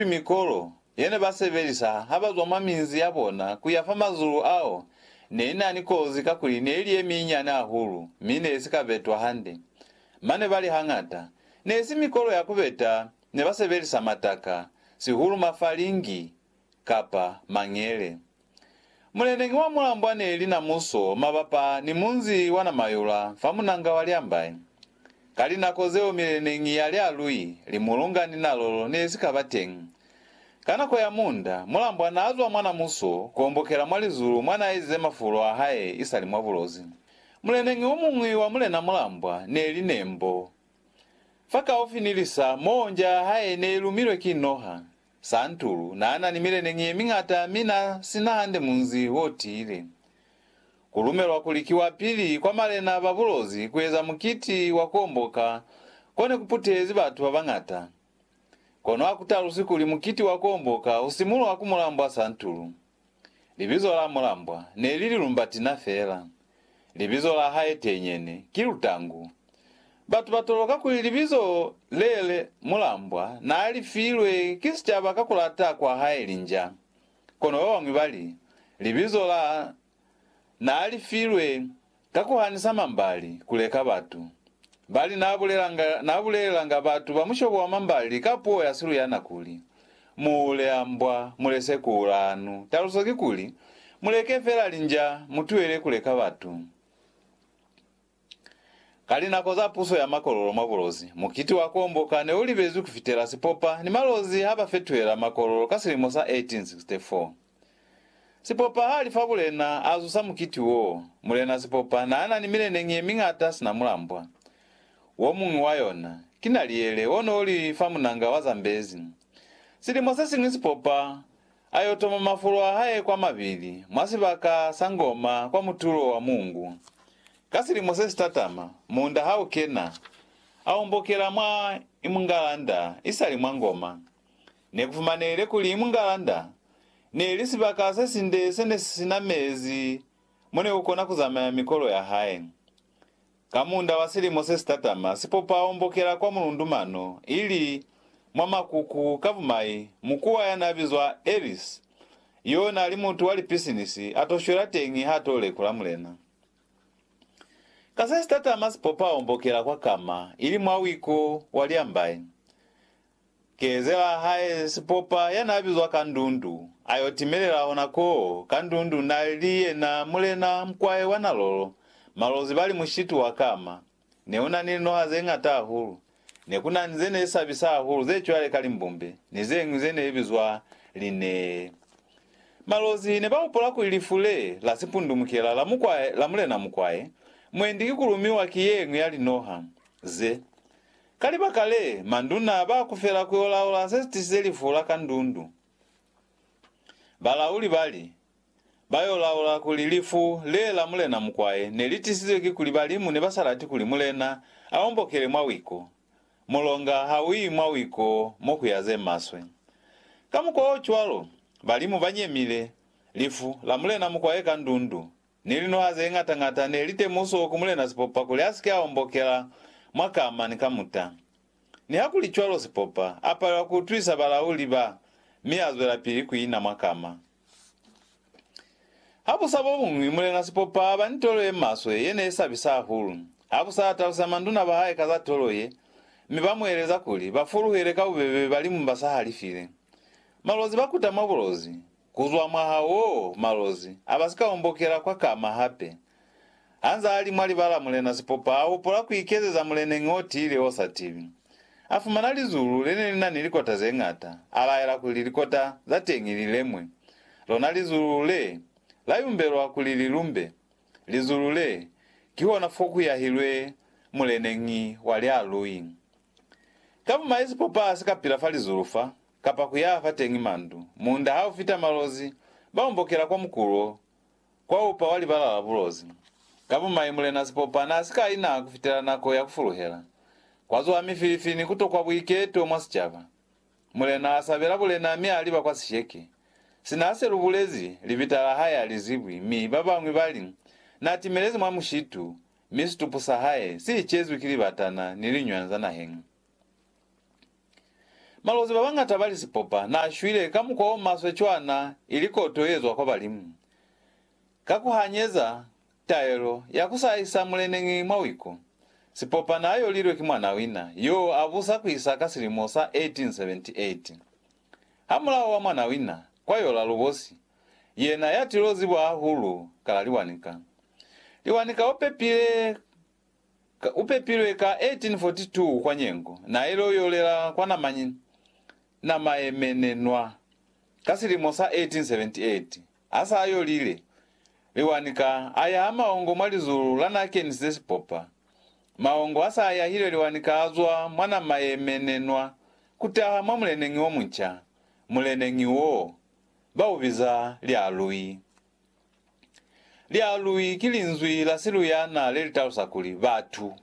Ki mikolo ye ne ba sebelisa ha ba zwa mwa minzi ya bona ku ya fa mazulu ao ne i na ni kozi kakuli ne i li ye minyinyani hahulu mi ne i si ka betwa hande. Mane ba li hañata ne i si mikolo ya ku beta ne ba sebelisa mataka, sihulu mafalingi kapa mangele. Muleneñi wa mulambwa neli na muso mabapa ni munzi wa Namayula fa munanga wa Lyambai. Ka linako zeo mileneñi ya Lyalui, Limulunga ni Nalolo nesika ba teñi. Ka nako ya muunda, mulambwa naazwa mwa na muso kuombokela mwa lizulu mwa naaezize mafulo ahae isali mwa bulozi. Muleneñi omuñwi wa mulena mulambwa neli Nembo. Fakaufi ni lisa moo nja yahae neilumilwe ki noha, Santulu na na ni mileneñi ye miñata mi na si na hande munzi o tiile. Ku lumelwa kuli ki wa pili kwa malena ba bulozi ku eza mukiti wa ku omboka ko ne ku putehezi batu ba bañata. Kono ha ku talusi kuli mukiti wa ku omboka u simulwa ku mulambwa Santulu. Libizo la mulambwa ne li Lilumbatina fela. Libizo la hae tenyene ki Lutangu. Batu ba toloka kuli libizo le le mulambwa naa li filwe ki sicaba ka ku lata kwa hae linja. Kono ba bañwi ba li, libizo la naa li filwe Ka ku hanisa mambali, ku leka batu. Bali n'a bulelanga, n'a bulelelanga batu ba mushobo wa mambali ka puo ya Siluyana kuli, Mu hule a mbwa, mu lese ku ula hanu. Taluso ki kuli, Mu leke fela linja, mu tuele ku leka batu. Ka linako za puso ya makololo mwa bulozi, mukiti wa kuomboka ne u libezwi ku fitela sipopa ni malozi ha ba fetuhela makololo ka silimo sa 1864. Sipopa ha li fa mulena, a zusa mukiti wo. Mulena Sipopa n'a na ni mileneñi ye miñata sina mulambwa. Wo muñwi wa yona, ki Naliyele, o n'o li fa munanga wa Zambezi. Silimo se siñwi Sipopa a y'o toma mafulo a hae kwa mabili, mwa sibaka sa Ngoma kwa mutulo wa Mungu. Ka silimo se si tatama, muunda ha u kena, a ombokela mwa Imungalanda, isali mwa Ngoma. Ne ku fumanehile kuli mungala nda ne li sibaka se sinde se ne si sina mezi mo ne ku kona ku zamaya mikolo ya hae. Ka munda wa silimo se si tatama, sipopa o mbokela kwa mulundu mano, ili mwa makuku ka bumai, mukuwa ya n'a bizwa Ellis, y'o n'a li mutu wa lipisinisi, a t'o shwela teñi h'a t'o lekula Mulena. Ka se si tatama sipopa o mbokela kwa kama, ili mwa wiko wa liambai. Kezela hae sipopa ya n'a bizwa ka ndundu, a y'o timelela hona koo ka ndundu n'a li yena mulena mukwae wa nalolo. Malozi ba li mushitu wa kama. Ne u na ni linoha ze ñata hahulu. Ne ku na ni ze ne sabisa hahulu ze cwale ka limbumbe ni ze ñwi ze ne bizwa linee. Malozi ne ba hupola kuli lifu le la sipundumukela la mukwae la mulena mukwae mwendi ki ku lumiwa ki ye ñwi ya linoha ze. Ka libaka le, manduna ba kufela ku yo laula se si tisize lifu la kandundu. Balauli ba li, Ba yo laula kuli lifu le la Mulena Mukwaye ne li tisizwe ki kuli balimu ne ba sa lati kuli Mulena a ombokele mwa wiko. Mulonga ha u yi mwa wiko mo ku ya ze maswe. Ka mukwa o cwalo, balimu ba nyemile lifu la Mulena Mukwaye kandundu. Ni linoha ze ñata ñata ne li temuso ku Mulena Sipopa kuli a si ke a ombokela mwa kama ni kamuta. Nihakulicwalo Sipopa a palelwa ku utwisa balauli ba mi a zwelapili ku ina mwa kama. Habusa bo buñwi, Mulena Sipopa a ba ni tolo ye maswe ye ne i sabisa hahulu. Habusa a talusela manduna ba hae ka za tolo ye, mi ba mu eleza kuli ba fuluhele ka bubebe balimu ba sa halifile. Malozi ba kuta mwa bulozi, Kuzwa mwaha woo, malozi abasika ombokela kwa kama hape. Hanzaa li mwa libala Mulena Sipopa a hopola kuikezeza muleneñi o tiile o sa tibi. A fumana lizulu lene li na ni likota ze ngata, a laela kuli likota za teñi li lemwe. Lona lizulu le, la yumbelwa kuli li lumbe. Lizulu le, kihona fo ku yahilwe muleneñi wa lialui. Ka bumaye Sipopa a si ka pila fa lizulu fa, kapa ku yaha fateñi mandu. Munda ha u fita malozi, ba ombokela kwa mukulo, kwa upa wa libala la bulozi. Ka bumai, Mulena Sipopa n'a si ka ina ku fitela nako ya ku fuluhela. Kwa zuha mifilifi ni ku tokwa buiketo mwa sicaba. Mulena a sabela bulena mi a liba kwa sisheke. Sina a se lu bulezi, libita la hae a li zibwi mi ba bañwi ba li, N'a timelezi mwa mushitu, mi situpu sa hae si icezwi ki libatana ni liñwanza naheñi. Malozi ba bañata ba li sipopa n'a shwile ka mukwa o maswe cwana ili koto ye zwa kwa Balimu. Ka ku hanyeza taelo ya ku sa isa muleneñi mwa wiku, sipopa n'a yolilwe ki mwanawina y'o a busa ku isa ka silimo sa 1878. Hamulaho wa mwanawina kwa yola lubosi, yena ya til'o zibwa hahulu ka la Liwanika. Liwanika o pepile U pepilwe ka 1842 kwa Nyengo, na ilo yolela kwa Namanyi na maemenenwa. Ka silimo sa 1878, ha sa yolile, Liwani ka a yaha maongo mwa lizulu la Nakeni ze Sipopa. Maongo ha sa yahile Liwani ka a zwa mwa na maemenenwa ku taha mwa muleneñi o munca. Muleneñi woo ba u biza Lialui. Lialwi ki linzwi la Siluyana le li talusa kuli, batu.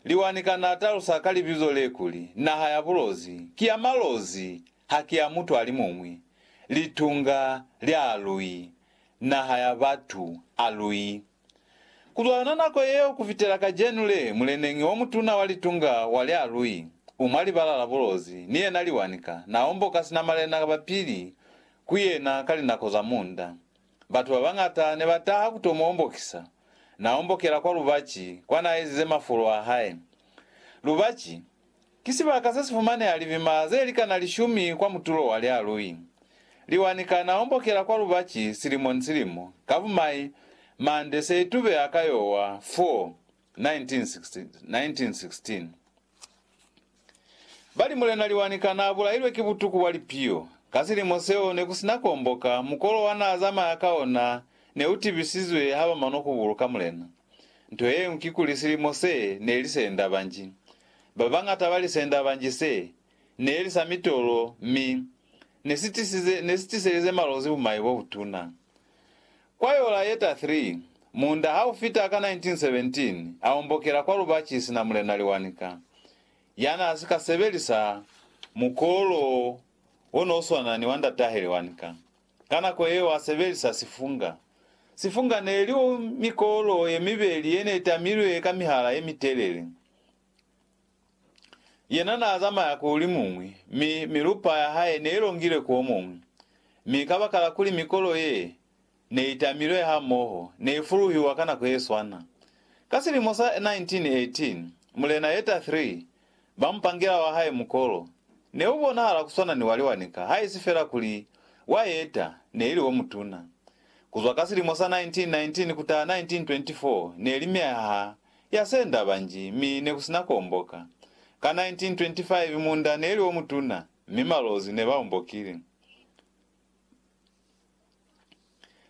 Liwani kana a talusa ka libizo le kuli, naha ya bulozi, ki ya malozi, haki ya mutu alimuñwi. Litunga, lialwi, naha ya batu, alwi. Ku lwana nako yeo ku fitela kacenu le, muleneñi o mutuna wa litunga wa lya Lui, u mwa libala la bulozi, ni yena liwanika, na omboka sina malena ba pili ku yena ka linako za munda. Batu ba bañata ne ba taha ku to mu ombokisa. Na ombokela kwa lubaci, kwa na ezize mafolo a hae. Lubaci, Ki sibaka se si fumaneha libima ze likana lishumi kwa mutulo wa lialui. Liwa ni kana ombokela kwa lubaci silimo ni silimo, ka bumai, mande se itubeha ka yowa, Fo. 1916. Bali Mulena Liwa ni kana abulailwe ki butuku bwa lipiyo. Ka silimo seo ne ku sina kuomboka, mukolo wa na zamaya ka ona ne u tibisizwe ha ba manwa ku buluka Mulena. Nto yeñwi kikuli silimo se ne li se enda banji. Ba bañata ba lisenda ba nji se ne li sa mitolo mi ne si tisize ne si tiselize malozi bumai bo butuna. Kwa yola ye ta 3, muunda ha u fita ka 1917 a ombokela kwa Lubaci sina Mulena Liwanika ya n'a si ka sebelisa mukolo o n'o swana ni wa ndat'ahe Liwanika. Ka nako yeo a sebelisa sifunga. Sifunga ne li mikolo ye mibeli ye ne i tamilwe ka mihala ye mitelele. Yena naazamaya ku limuñwi, mi milupa ya hae neilongile ku omuñwi, mi kabakala kuli mikolo ye neitamilwe hamoho neifuluhiwa ka nako yeswana. Ka silimo sa 1918, Mulena Yetta iii ba mupangela wa hae mukolo neubonahala kuswana ni wa liwanika haisi fela kuli wa Yetta neili omutuna. Kuzwa ka silimo sa 1919 kutaha 1924 neli myaha ya senda banji, mi ne ku si na ku omboka. Ka 1925 munda ne li o mutuna, mi malozi ne ba ombokile.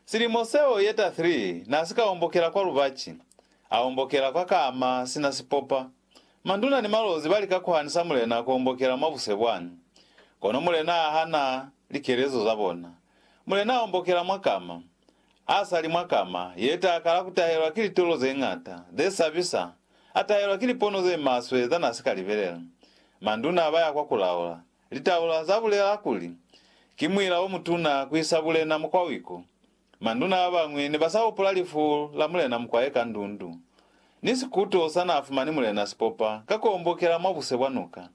Silimo seo ye ta 3 n'a si ka ombokela kwa lubaci, a ombokela kwa kama sina sipopa. Manduna ni malozi ba lika ku hanisa mulena ku ombokela mwa buse bwani, kono mulena a hana likelezo za bona. Mulena a ombokela mwa kama. Ha sa li mwa kama ye ta kala ku tahelwa ki litolo ze ñata, ze sabisa, a tahelwa ki lipono ze maswe za na si ka libelela. Manduna ba ya kwa ku laula. Litaula za bulela kuli, Ki muila o mutuna ku isa bulena mukwawiku. Manduna ba bañwi ne ba sa hupula lifu la mulena mukwaye ka ndundu, ni sikuto sa na fumani mulena si popa ka ku ombokela mwa buse bwa nuka.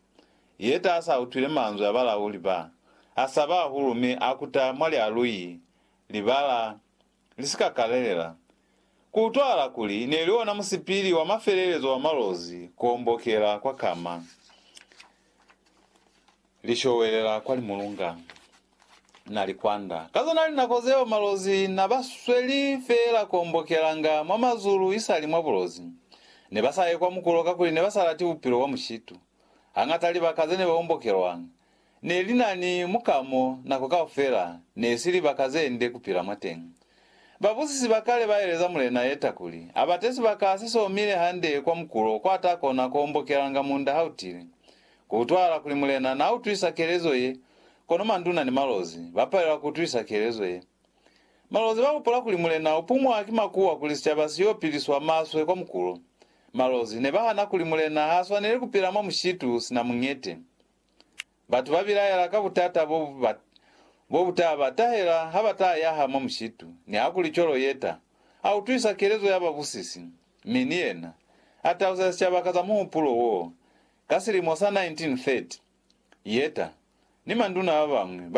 Ye ta sa utwile manzwi a balauli ba, a saba hahulu mi a kuta mwa lialui libala li si ka kalelela, ku utwahala kuli ne li ona musipili wa mafelelezo wa malozi ku ombokela kwa kama, li showelela kwa limulunga, na li kwanda. Ka zona linako zeo malozi na ba sweli feela ku ombokelanga mwa mazulu isali mwa bulozi. Ne ba sa ye kwa mukulo kakuli ne ba sa lati bupilo bwa mushitu. Hañata libaka ze ne ba ombokelwanga, Ne li na ni muka mo nako kaufela ne si libaka ze nde ku pila mwateñi. Babusisi ba kale ba eleza Mulena Yeta kuli, a bate sibaka se somile hande kwa mukulo kwa ta kona ku ombokelanga munda ha u tile. Ku utwahala kuli Mulena na utwisa kelezo ye, kono manduna ni malozi, ba palelwa ku utwisa kelezo ye. Malozi ba hupula kuli Mulena u pumwa ki makuwa kuli sicaba si yo piliswa maswe kwa mukulo. Malozi ne ba hana kuli Mulena ha swaneli ku pila mwa mushitu sina muñete. Batu ba bilaela ka butata bo ba bo buta ba tahela ha ba ta yaha mwa mushitu. Nihakuli cwalo Yetta a utwisa kelezo ya babusisi, mi ni yena a tausa sicaba ka za muhupulo wo. Ka silimo sa 1930, Yetta ni manduna ba bañwi ba